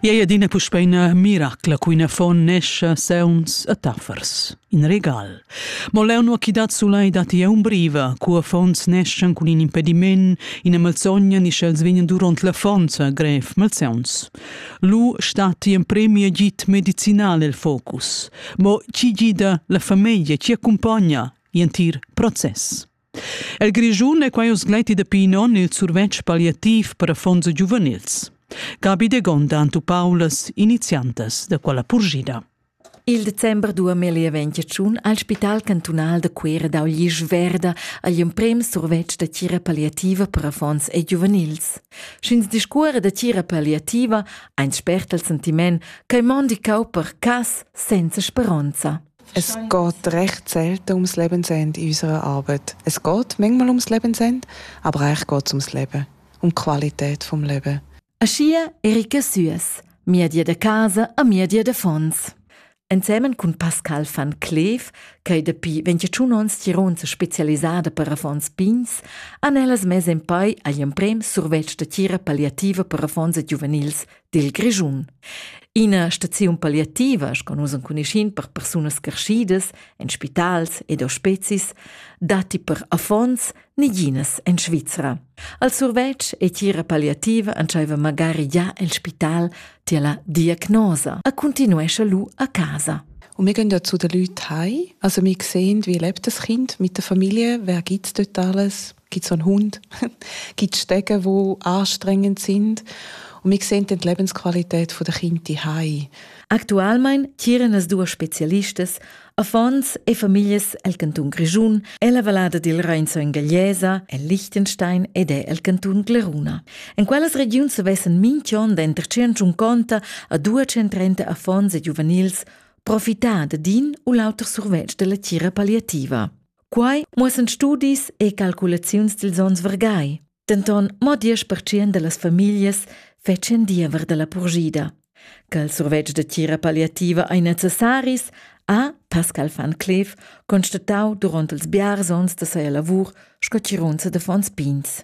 Ei adina puspei ina miracla cun affon nescha sauns e taffers. In regal. Mo leu nu chi dat sulai datti un briva, cu affons neschan cun in impediment, ina malsogna ni sch'els vegnan duront l'affonza grev malsauns. Lu statti in premi agit medicinal el focus. Mo chi gida la famiglia, chi accumpagna, entir process. El Grischun è quai usgleiti dapi in onn il survetsch palliativ per affons giuvenils. Gabi de Gonda Antu Paulas, iniziantas da quella purgida. Il december 2021 ha il Spital cantunal da Cuera dau glisch verda agl emprem survetsch da tira palliativa per affons e giuvenils. Sch'ins discuora da tira palliativa, ein spert il sentiment che mondi cau per cas senza speronza. Es geht recht selten ums Lebensende in unserer Arbeit. Es geht manchmal ums Lebensende, aber eigentlich geht es ums Leben, um die Qualität des Lebens. Aschia Erika Süß, Miedie de Casa a Miedie de Fons. Ensemen cun Pascal van Cleef, ch'ei dapi 21 onns Tiron se specialisada per affons pigns, han ellas mes en pei agl emprem survetsch da tira palliativa per affons e giuvenils dil Grischun. Ina staziun palliativa, sco nus enconuschin per persunas carschidas en spitals ed ospezis, datti per affons neginas en Svizra. Al survetsch e tira palliativa entscheiva magari già el spital tier la diagnosa, a continuescha lu a casa. Und wir gehen dazu den Leuten heim. Also wir sehen, wie lebt das Kind mit der Familie, wer gibt dort alles. gibt so einen Hund, gibt Stege, die anstrengend sind. Und wir sehen die Lebensqualität der Kinder heim. Aktualmein tieren as duas specialistas, affons e familias el canton Grischun e la vallada dil Reinzo in Gagliesa, en Liechtenstein ed el canton Gleruna. En quellas regiuns vessen minchon denter 150 a 230 affons e giuvenils profità de din u l'auter survetsch della tira palliativa. Quai muossan studis e calculaziuns dils onns vargai. Denton mo diesch percent dallas famiglias fetschien diever dalla purgida. Che il survetsch de tira palliativa ei necessaris, ha Pascal van Cleef constatau duront ils biars onns da seia lavur sco tirunza de Fons Pins.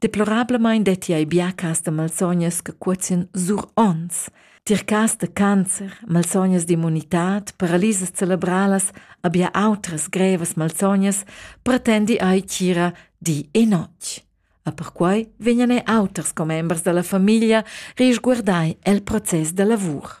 Deplorablamain detti ei biaccas da malsognas che cuozien sur onns. Tircas da cancer, malsognas d'immunitad, paralisas cerebralas, abbia autras grevas malsognas pretendi ai cira di e notg. A perquai vegnan ei auters commembers dalla famiglia risguardai el process da lavur.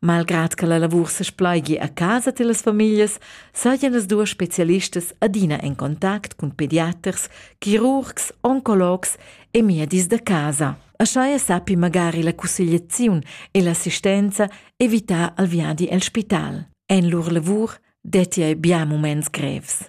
Malgrad che la lavur sespleigi a casa tilas famiglias, sajan las duas specialistas adina en contact cun pediaters, chirurgs, oncologs e miedis da casa. Aschia sappi magari la cussegliaziun e l'assistenza evitar al viadi el spital. En lur lavur detti ei bia muments grevs.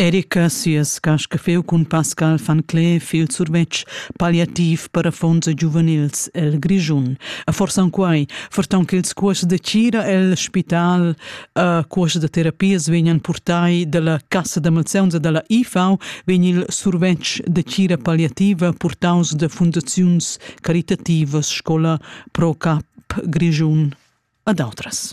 Erika sias cascafeu cun Pascal van Cleef il survetsch palliativ per affons e giuvenils el Grischun. E forsa en quai, fortan ch'ils cuors de Cira el spital a cuors de terapias vegnan purtai dalla Cassa da Malseuns e dalla IFAU, vegn il survetsch de Cira palliativa purtaus da fundaziuns caritativas Scola Pro Cap Grischun ad outras.